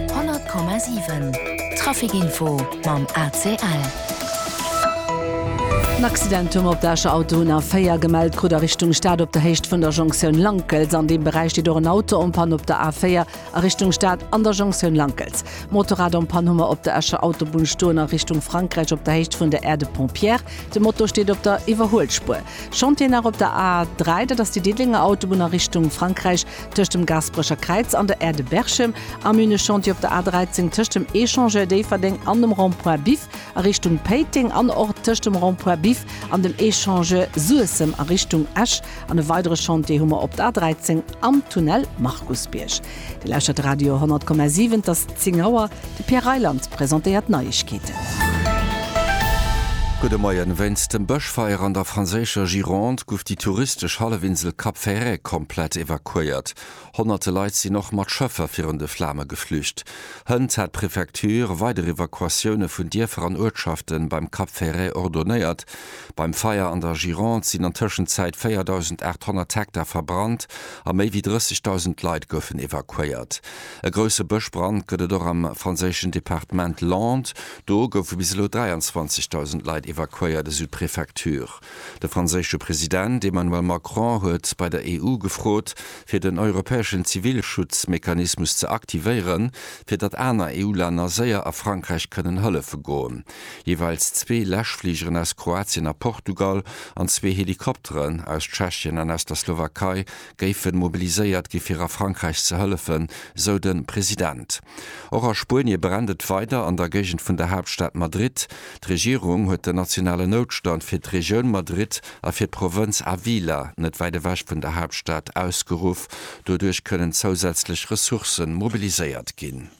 100,7 Trafic Info mam ACL. En Accident hu mer op der Escher Autobunn A4 gemellt krut a Richtung Stad op der Héicht vun der Jonktioun Lankels. An deem Beräich steet och en Auto en panne op der A4 a Richtung Stad an der Jonktioun Lankels. Motorrad en panne hu mer op der Escher Autobunn stoen a Richtung Frankräich op der Héicht vun der Aire de Pont Pierre. De Moto steet op der Iwwerhuelspuer. Chantier nach op der A3, dat ass déi Diddelenger Autobunn a Richtung Frankräich. Tëscht dem Gasperecher Kräiz an der Aire de Berchem, am Üne-Chantier op der A 13, tëscht dem Echangeur Déifferdeng an dem Rond-point Biff a Richtung Péiteng an och tëscht dem Rond-point Biff an dem Echangeur Suessem a Richtung Esch. An e weidere Chantier hu mer op der A 13 am Tunnel Markusbierg. Dir lauschtert Radio 100,7, et ass 10 Auer. De Pierre Reyland presentéiert d'Neiegkeeten. Gudde Moien. Wéinst dem Bëschfeier an der franséischer Gironde guff déi touristesch Hallefinsel Cap Ferret komplett evakuéiert. Honnerte Leit sinn och mat Schëffer virun de Flame geflücht. Hënt hat d'Prefecture weider Evakuatioune vun Dierfer an Uertschafte beim Cap Ferret ordonéiert. Beim Feier an der Gironde sinn an Tëschenzäit 4.800 Hektar verbrannt a méi wéi 30.000 Leit goufen evakuéiert. E grousse Bëschbrand gëtt et och am franséischen Departement Landes. Do goufe bis elo 23.000 Leit evakuéiert, esou d'Prefecture. De franséische President Emmanuel Macron huet bei der EU gefrot, fir den europäeschen Zivilschutzmechanismus ze aktivéieren, fir datt aner EU-Länner séier a Frankräich kënnen hëllefe goen. Jeeweils zwee Läschfligeren aus Kroatien a Portugal an zwee Helikopteren aus Tschechien an aus der Slowakei géife mobiliséiert gi fir a Frankräich ze hëllefen, sou de President. Och a Spuenie brennt et weider an der Géigend vun der Haaptstad Madrid. D'Regierung huet den nationalen Noutstand fir d'Regioun Madrid a fir d'Provënz Ávila, net wäit ewech vun der Haaptstad, ausgeruff. Doduerch kënnen zousätzlech Ressourcë mobiliséiert ginn.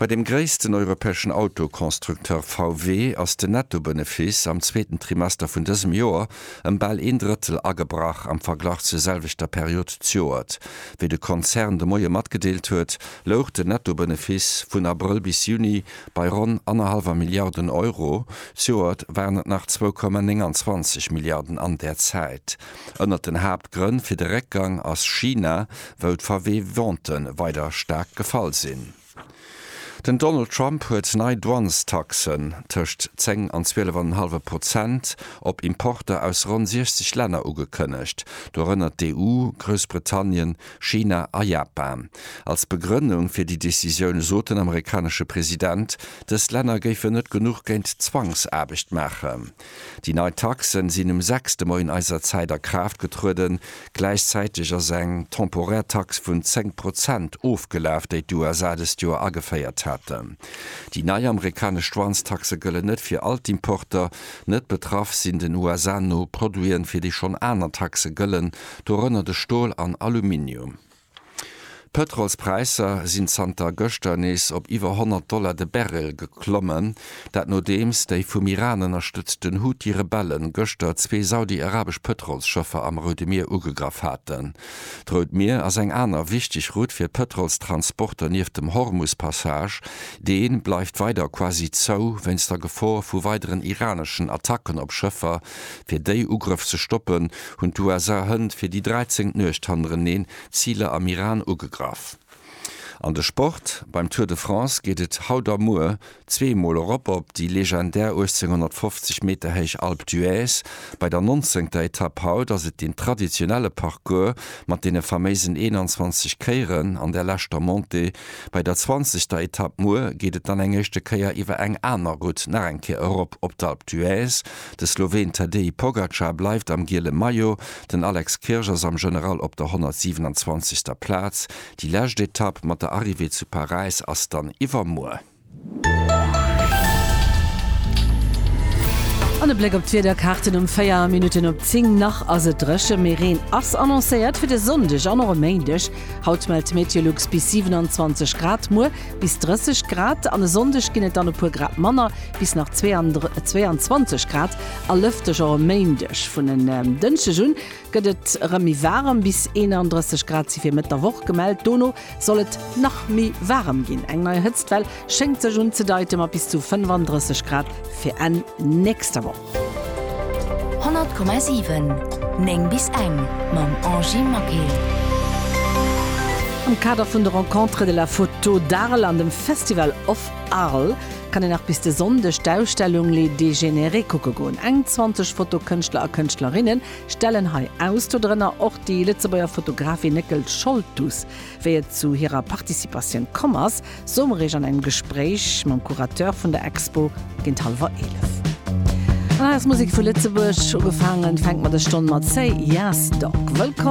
Bei dem gréissten europäeschen Autoconstructeur VW ass den Nettobënefiss am zweeten Trimester vun dësem Joer ëm bal een Drëttel agebrach am Verglach zur selwechter Period d'Joert. Wéi de Konzern de Moie matgedeelt huet, louch den Nettobënefiss vun Abrëll bis Juni bei ronn annerhallwer Milliarden Euro, d'Joert waren et nach zwou Komma 29 Milliarden an där Zäit. Ënnert den Haaptgrënn fir de Réckgang ass China, wou d'VW-Ventë weider staark gefall sinn. Den Donald Trump huet nei Douanestaxen, tëscht 10 an 12 an en hallwe Prozent, op Importer aus ronn 60 Länner ugekënnegt, dorënner d'EU, Groussbritannien, China a Japan. Als Begrënnung fir déi Decisioun sot den amerikanesche President, dës Länner géifen net genuch géint d'Zwangsaarbecht maachen. Déi nei Taxen sinn um 6 de Moien eiser Zäit a Kraaft getrueden. Gläichzäiteg ass eng temporär Tax vun 10 Prozent ofgelaf, déi d'USA dëst Joer ageféiert haten. Déi nei amerikanesch Douanestaxe gëllen net fir all d'Importer. Net betraff sinn den USA no Produiten, fir déi schonn aner Taxe gëllen, dorënner de Stol an Aluminium. D'Pëtrolspräisser sinn zanter gëschter nees op iwwer 100 Dollar de Barrel geklommen. Dat nodeems déi vum Iran ënnerstëtzten Houthi-Rebelle gëschter zwee saudi-arabesch Pëtrolsschëffer am Roude Mier ugegraff haten. D'Rout Mier ass eng aner wichteg Route fir d'Pëtrolstransporter nieft dem Hormus-Passage. Dee bleift weider quasi zou wéinst der Gefor vu weideren iraneschen Attacken op Schëffer, Fir déi Ugrëff ze stoppen, hunn d'USA Hënn fir déi dräizéngt Nuecht hannereneen Ziler am Iran ugegraff. An de Sport, Beim Tour de France geet et haut a muer zwee Mol erop op déi legendär 1850 Meter héich Alpe d'Huez. Bei der nonzéngter Etapp haut ass et deen traditionelle Parcours mat deene faméisen 21 Kéieren an der leschter Montée. Bei der zwanzegter Etapp muer geet et dann eng éischte Kéier iwwer eng aner Route nach eng Kéier erop op d'Alpe d'Huez. De Sloween Tadej Pogacar bleift am giele Maillot, den Alex Kirch ass am General op der 127. Plaz. Déi lescht Etapp mat der Arrivée zu Paräis ass dann iwwermuer. An e Bléck op d'Wiederkaarten um 4 Minutten op 10. Nach ass et dréche, mee Reen ass annoncéiert fir de Sonndeg an och e Méindeg. Haut mellt Meteolux bis 27 Grad, muer bis 30 Grad an e Sonndeg ginn et dann e puer Grad manner, bis nach 22 Grad a lëfteg. Och e Méindeg vun en Dënschdeg un gëtt et erëm méi waarem, bis 31 Grad si fir Mëtt der Woch gemellt. Dono soll et nach méi waarem ginn, eng nei Hëtztwell schéngt sech unzedeite mat bis zu 35 Grad fir Enn nächster Woch. 100,7 9 bis eng mam Angy Maquet. Am Kader vun de Rencontres de la photo d'Arles an dem Festival of Arles kann een nach bis de Sonndeg d'Ausstellung Les Dégénérés kucke goen. Eng 20 Fotokënschtler a kënschtlerinne stellen hei aus, dodrënner och déi Lëtzebuerger Fotografin Néckel Scholtus. Wéi et zu hirer Participatioun komm ass, soe mer iech an engem Gespréich mam Curateur vun der Expo géint hallwer 11. An der Hausmusek vu Lëtzebuerg ugefaangen, fänkt mer dës Stonn mat Say Yas Dog. Wëllkomm!